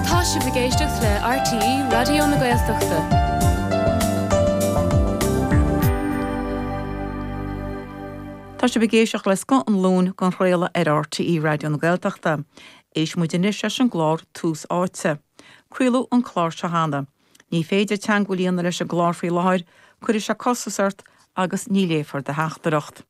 Tá sibh ag éisteacht le RTÉ Raidió na Gaeltachta. Tá sibh ag éisteacht le Scoth an Luain dhá chraoladh ar RTÉ Raidió na Gaeltachta. Éistfidh muid anois leis an gclár Tús Áite. Craoladh an clár seo cheana. Ní féidir teangmháil a dhéanamh leis an gclár faoi láthair, cuirfidh sé costas ort agus ní léifear do theachtaireacht.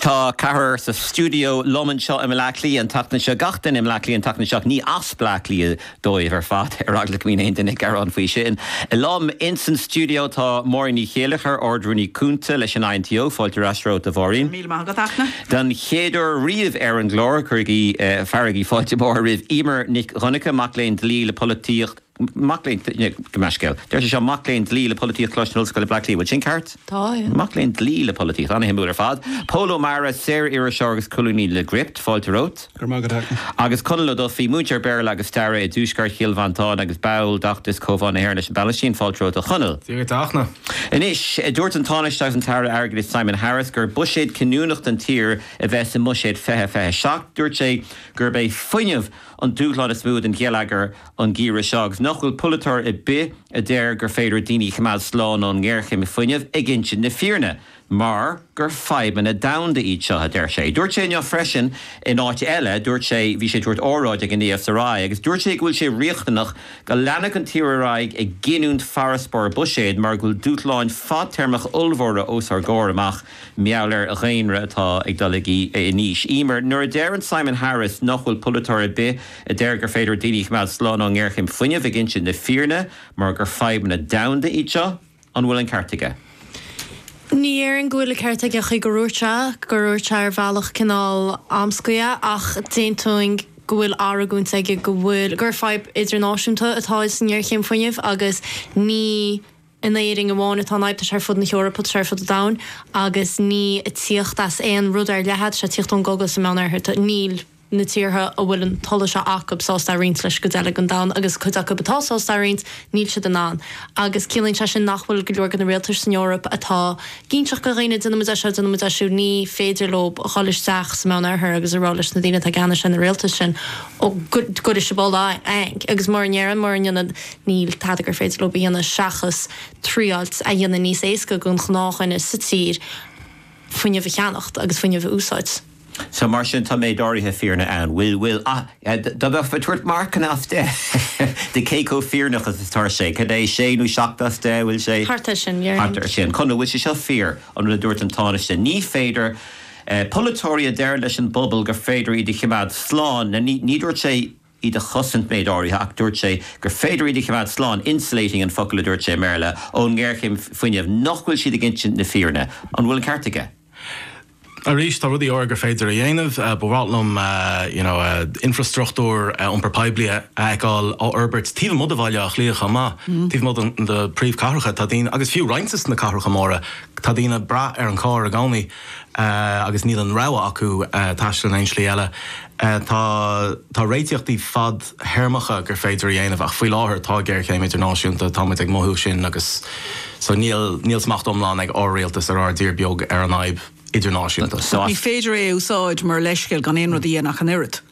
Tá ceathrar sa stiúideo liom anseo i mBleá Cliath an tseachtain seo, gach duine i mBleá Cliath an tseachtain seo, ní as Bleá Cliath dóibh ar fad, ar eagla go mbíonn aon duine ag gearán faoi sin. Liom insan stiúideo tá Máirín Ní Chéileachair, Ard-Rúnaí Cúnta leis an INTO, fáilte ar ais romhat a Mháirín. Míle maith agat, a Fhachtna. Don chéad uair riamh ar an gclár, cuirigí fearaigí fáilte mhór roimh Emer Nic Dhonnacha, mac léinn dlí le polaitíocht, Mac léinn dlí, gabh mo leithscéal. Deir sé seo, mac léinn dlí le polaitíocht, Coláiste na hOllscoile, Bleá Cliath. Bhfuil sin ceart? Tá, yeah. Mac léinn dlí le polaitíocht, an-shuimiúil ar fad. Pól Ó Meara, saoririseoir agus colúnaí le Gript, fáilte romhat. Go raibh maith agat, a Fhachtna. Agus Conall Ó Dufaigh, múinteoir Béarla agus Staire i dTuaisceart Chill Mhantáin agus ball d'fheachtas Comhbhá na hÉireann leis an bPalaistín, fáilte romhat, a Chonaill. Dia duit, a Fhachtna. Anois, dúirt an Tánaiste agus an tAire Airgeadais Simon Harris gur buiséad cinniúnach don tír a bheas i mBuiséad 2027. Dúirt sé gurb é fuinneamh an dúshlán is mó don gheilleagar an geimhreadh seo agus nach bhfuil polaiteoir ar bith a deir gur féidir daoine a choimeád slán ón ngéarchéim fuinnimh ag insint na fírinne mar gur fadhbanna domhanda iad seo, a deir sé. Dúirt sé inniu freisin in áit eile, dúirt sé, bhí sé ag tabhairt óráid ag an ESRI agus dúirt sé go bhfuil sé riachtanach go leanfadh an tír ar aghaidh ag giniúint farasbarr buiséid mar go bhfuil dúshláin fadtéarmacha ollmhóra os ár gcomhair amach. mar gheall ar dhaonra atá ag dul in aois. Emer, nuair a deireann Simon Harris nach bhfuil polaiteoir ar bith a deir gur féidir daoine a choimeád slán ón ngéarchéim fuinnimh ag insint na fírinne mar gur fadhbanna domhanda iad seo, an bhfuil an ceart aige? Ní dhéarfainn go bhfuil an ceart aige sa chaoi gur dhúirt sé, gur dhúirt sé ar bhealach cineál amscaí é, ach d'aontóinn go bhfuil argóint aige go bhfuil, gur fadhb idirnáisiúnta atá insan ngéarchéim fuinnimh agus ní. in Éirinn amháin atá an fhadhb, tá sé ar fud na hEorpa agus ar fud an domhain agus ní ag tíocht as aon rud ar leith atá sé, tíocht ón gcogadh sa Meánoirthear, níl na tíortha a bhfuil an t-ola seo acu sásta a roinnt leis an gcuid eile den domhan agus cuid acu atá sásta a roinnt, níl siad in ann agus ciallaíonn sé sin nach bhfuil go leor de na rialtais san Eoraip atá cinnteach go dhaonna, déanfaimid é seo, déanfaimid é siúd, ní féidir leo a dhul isteach sa Meánoirthear agus a rá leis na daoine atá i gceannas ar na rialtais sin, ó, gura sibh a dhul eang agus mura ndéarfainn, mura ndéanfainn. Níl tada gur féidir leo a dhéanamh seachas triail é a dhéanamh níos éasca don ghnáthdhuine sa tír fuinneamh a cheannacht agus fuinneamh a úsáid. So, mar sin, tá méid áirithe fírinne ann. Bhfuil, bhfuil, ah, dá mbeifeá ag tabhairt marcanna as deich de cé chomh fírinneach is atá sé, cad é, sé nó seacht as deich, bhfuil sé? Thart ar sin, yeah. Thart ar sin. Conall, bhfuil sé seo fíor, an rud a dúirt an Tánaiste, ní féidir, eh, polaiteoirí a deir leis an bpobal gur féidir iad a chimeád slán, na, ní, ní dúirt sé, iad a chosaint méid áirithe ach dúirt sé gur féidir iad a choimeád slán, 'insulating' an focal a dúirt sé i mBéarla, ón ngéarchéim fuinnimh. Nach bhfuil siad ag insint na fírinne? An bhfuil an ceart aige? Arís, tá rudaí áirithe gur féidir a dhéanamh. Ba mhaith liom you know infreastruchtúr iompar poiblí a fheiceáil á fhorbairt taobh amuigh de Bhaile Átha Cliath chomh maith, taobh amuigh de na príomhchathracha. Tá daoine, agus fiú roinnt de na cathracha móra, tá daoine ag brath ar an charr i gcónaí. agus níl an rogha acu taisteal in aon slí eile. Tá réitíochtaí fad-théarmacha gur féidir a dhéanamh ach faoi láthair tá géarchéim idirnáisiúnta, tá muid ag mothú sin agus so níl smacht iomlán ag ár rialtas ar ár dtír beag ar an fhadhb idirnáisiúnta. Ní féidir é a úsáid mar leithscéal gan aon rud a dhéanamh ach an oiread.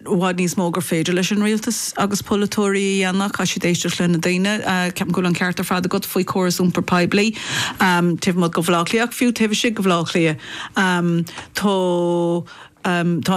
i bhfad níos mó gur féidir leis an rialtas agus polaiteoirí a dhéanamh. Caithfidh siad éisteacht le na daoine. Ceapaim go bhfuil an ceart ar fad agat faoi chóras iompar poiblí taobh amuigh de Bhaile Átha Cliath ach fiú taobh istigh de Bhaile Átha Cliath tá